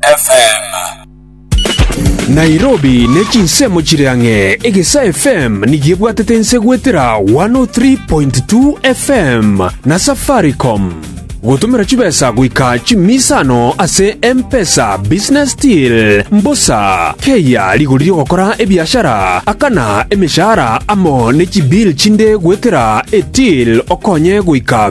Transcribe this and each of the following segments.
FM. Nairobi ne chinsemo chire ang'e, Egesa FM nigo ebwatete ense goetera 103.2 FM na Safaricom. Gotomera chibesa goika chimisano ase M-Pesa Business Deal, mbosa, keyia rigori ri'ogokora ebiashara, akana emeshahara amo ne chibill chinde goetera eTill okonye goika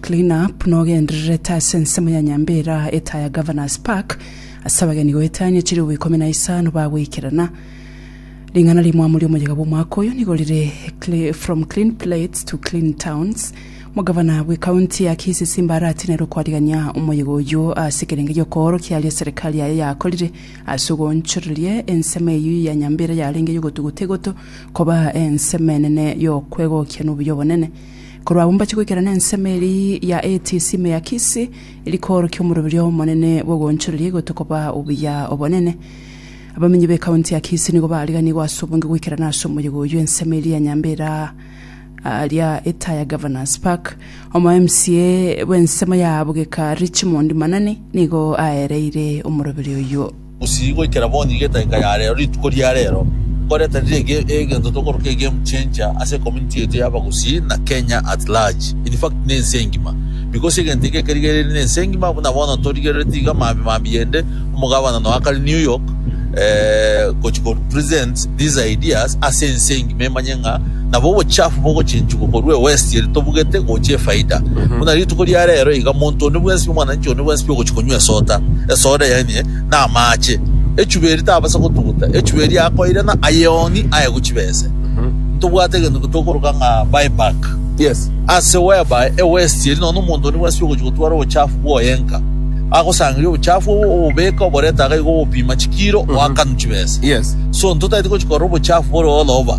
Clean up nogendererete ase ensemo ya Nyambera etaya ya Governors Park ase abageni goeta anya chiribu ikomi na isano bagoikerana. Ring'ana rimwamu riomoyega bw'omwaka oyo nigo rire From Clean Plates to Clean Towns. Omogavana bwe county ya Kisii Simba aratinerwe kwarigania omoyega oyio ase ekerenge gi'okoorokia aria serikali yaye yakorire ase ogoonchoreria ensemo eyio ya Nyambera yarenge y'ogotuguta egoto koba ensemo enene y'okwegokia nobuya obonene. Korwa agwo mbache goikera nensemo eria ya ATC Meakisi, eria koorokia omoroberio omonene bw'ogoonchoreria igoto koba obuya obonene. Abamenyi b'ekaunti ya Kisii nigo baariganiigwe ase obonge goikerana ase omoyega oyio ensemo eria ya Nyambera ria Etaya Governors Park. Omo-MCA bw'ensemo ya Bugeka Richmond Manani nigo aereire omoroberio oyio. Gusii goikera boni gedaika ya rero rituko ria rero, nkore tari rege egento tokoroka egame changer ase community yaito ya abagusii na Kenya at large, infact na ense engima. Because egento eke kerigereiri na ense engima buna bono torigerereti iga mambi mambi yende omogabana noakare New York gochi ko represent these ideas ase ense engima emanye ng'a Nabo obochafu bogochinchigwa korwa ewesti eri tobugete gocha efaida. Buna rituko ria reero iga monto onde bwensibia omwananchi onde bwensibia ogochia konywa esota, esoda yaye namaache, echuba eri tabasa gotuguta, echuba eri akoirana ayeng'oni aye gochia bese. Ntobwate egento eke tokoroka ng'a buyback. Yes. Ase whereby ewesti eri nonya omonto onde bwensibia ogochia gotwara obochafu bwoye nka, agosangeria obochafu obo obobeke oborete iga obopima chikiro oakanu chibesa. Yes. So ntotaeti gochia korora obochafu bore oloba.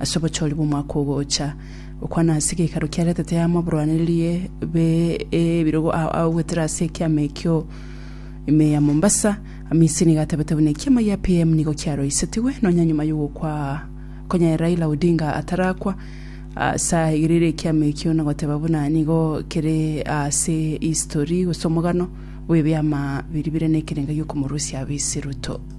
Ase obochori bw'omwaka ogocha, gokwana ase egeikaro kia retete y'amaburanererie be ebirogo ao agoetera ase ekiama ekio ime ya Mombasa, Amisi nigo atebete buna ekiama gia PM nigo kiaroisetigwe nonya nyuma y'ogokwa konya Raila Odinga atarakwa ase aegereire ekiama ekio na goteba buna nigo kere ase histori gose omogano bw'ebiama biri bire nekerengo giokomorusia Abisi Ruto.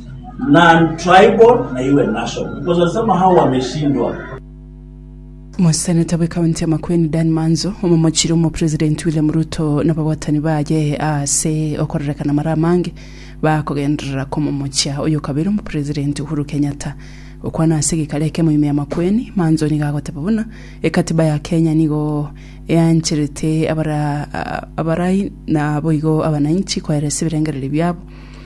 Moseneta bw'Ekaunti ya Makueni Dan Manzo, omomochire omopresidenti William Ruto nababwatani baye ase okorerekana amara amange bakogenderera komomochia oyokabere omopresidenti Uhuru Kenyatta. Gokwana ase egekaro ekemo ime ya Makueni, Manzo nigo agoteba buna ekatiba ya Kenya nigo eancherete abarai naboigo abanainchi koeresa ebirengererio biabo.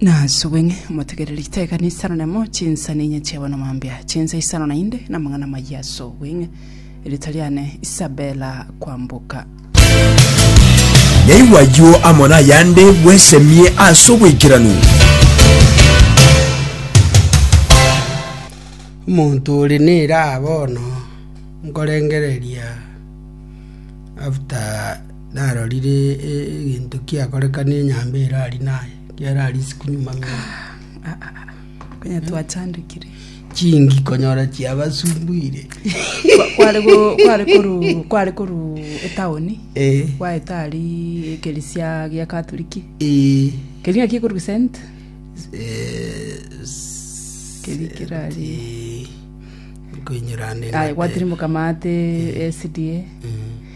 Nasubwe ng'e motegereri giteka nisano nemo chinsa ninye chiabo na mambia chinsa isano nainde na mang'ana mayia asubwe ng'e erita riane Isabella kwamboka Yaigwa ayio amo nayande bwesemie ase oboikeranu. Omonto ore nera bono nkorengereria after Narorire egento kiakorekana enyambe ere aria naye, kiare aria isiko nyuma ng'a Konya twachandekire. chingi konyora chiabasumbuire. Kware go- kware koru kware koru etaoni. Eh, Gwaeta ari ekerisia gia Katoliki. eh, Keria ki koru Saint. eh, s- Keri kirari. eh, koinyora ande Aye ng'ate. gwatirimoka mate SDA. Mm.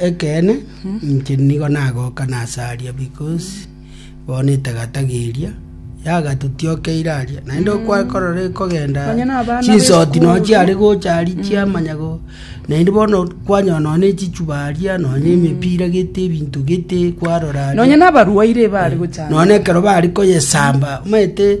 Ekeene, inche nigo nagoka nasaria because bono etagata geria yagatotiokeire aria naende okwakorora ekogenda Nonya na abana chinsoti b'esukuru. nochi are gocha ari chiamanya go naende bono kwanyora nonya echichuba aria nonya emepira gete ebinto gete kwarora aria. nonya nabarwaire baare gochana nonya ekero bari koyesamba omanyete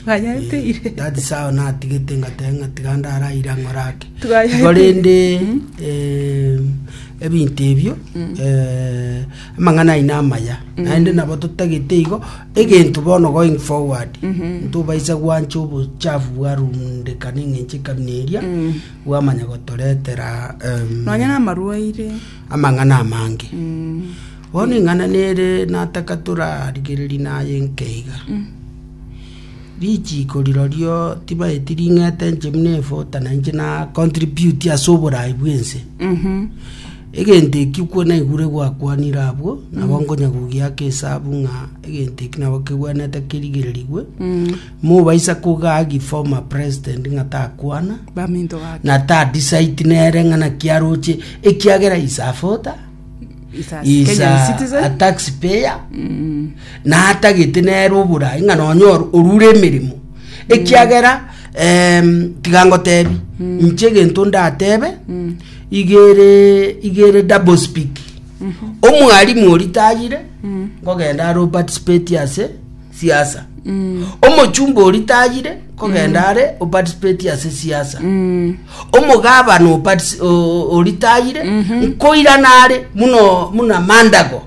Twayaeteire. Eh, that is how natigete ngateba ng'a tiga ndaraire ang'ore ake Twayaeteire. igo rende eh, ebinto ebio eh, amang'ana aino amaya naende nabo totagete igo egento bono going forward ntobaisa gwancha obochafu bwarundekana eng'enche ekabina eria bwamanya gotoretera em, Nonya namarwaire. amang'ana amange Bono ing'ana nere nataka torarigererie naye nke iga. Richiko rirorio tibaeti ring'ete inche buna efota na inche na contribute ase oborai bw'ense. Egento eki okwo naigure gwakwanire abwo, nabo nkonya gogiaka esabu ng'a egento eki nabo kegwenerete kerigererigwe. Mobaisa kogagi former president ng'a takwana, Baminto gake. na ta decide nere ng'a naki aroche ekiagera is afota. Is a is Kenyan a, a citizen. taxpayer na atagete nere oborai ng'a nonya or- orure emeremo ekiagera em, tiga ngotebi inche egento ndatebe igere igere double speak omwalimu ori tayire ngogenda aroparticipate ase siasa omochumba ori tayire kogenda are oparticipate ase siasa omogabana opartici- o- ori tayire nkoirana are muno muno amandago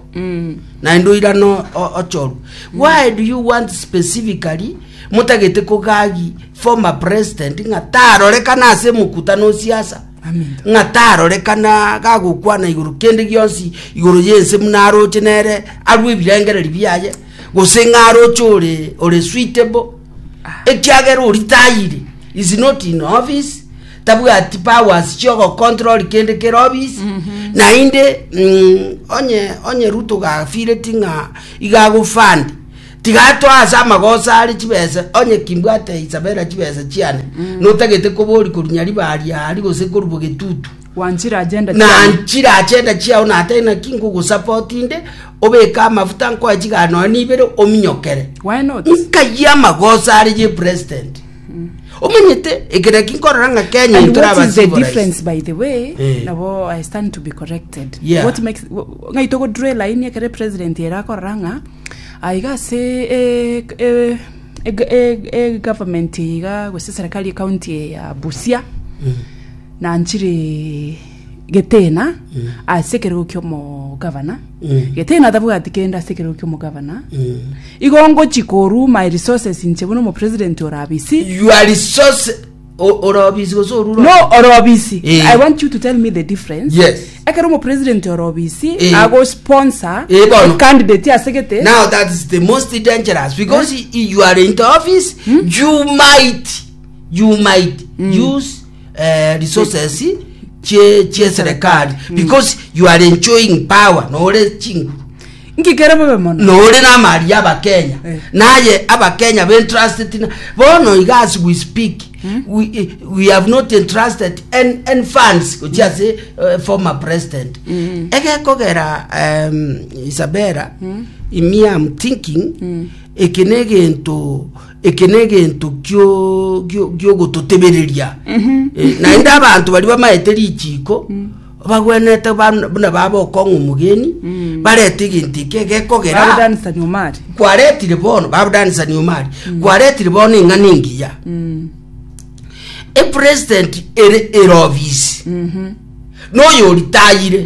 naende oirana o- o- ochoru why do you want specifically motagete kogagi former president ng'a tarorekana ase emokutano o siasa Aminto. ng'a tarorekana gagokwana igoro kende gionsi igoro yense buna aroche nere arwe ebirengereri biaye gose ng'a aroche ore ore suitable ekiagera oritayire is not in office tabwati powers chiogocontrol kende kere office naende mm, onye onye ruto gafireti ng'a igagofandi tigatoa ase amagosa are chibesa onye kimbwate isabera chibesa chiane notagete kobori korunya ribari ari gose korubo getutu Gwanchire agenda chiao. Nanchire agenda chiao natari naki ngogosaba otinde, obeke amafuta nkoe chigara nonya nibere ominyokere. Why not? Nkayie amagoso are ye president. Omanyete ekero eki nkorora ng'a Kenya And intore what is the abasiborais. difference by the way Eh. nabo i stand to be corrected Yeah. what makes wh- ng'ai togo draw line ekere president ere akorora ng'a aiga ase eh, eh, eh, eh, eh, government iga gose serikali ecounty ya busia na nchire getena ase ekerogo ki'omogabana getena tabwati kende ase ekerogo ki'omogabana igo ngochi koru my resources inche buna omopresident ore abisi you are resource o- orobisi gose orure no ore obisi Eh. i want you to tell me the difference Yes. ekero omopresident ore obisi Eh. nago sponsor Eh, bono. candidate ase gete now that is the most dangerous because i- you are in the office you might you might use eh, resources chie chie serikali because you are enjoying power nore chinguru ngikere bobe mono nore namari ya abakenya Eh. naye abakenya bentrusted na bono iga as we speak we, eh, we have not entrusted any, any funds gochia ase eh, former president egekogera um, isabera imi am thinking eke ne egento eke negento giogototebereria eh, naende abanto bari bamaete richiiko mm. bagwenete buna baba okong'a omogeni mm. barete egento eke gekogera kwaretire bono babudanisani omari mm. kwaretire bono eng'ana engiya epresident ere erobisi mm-hmm. noyo oritayire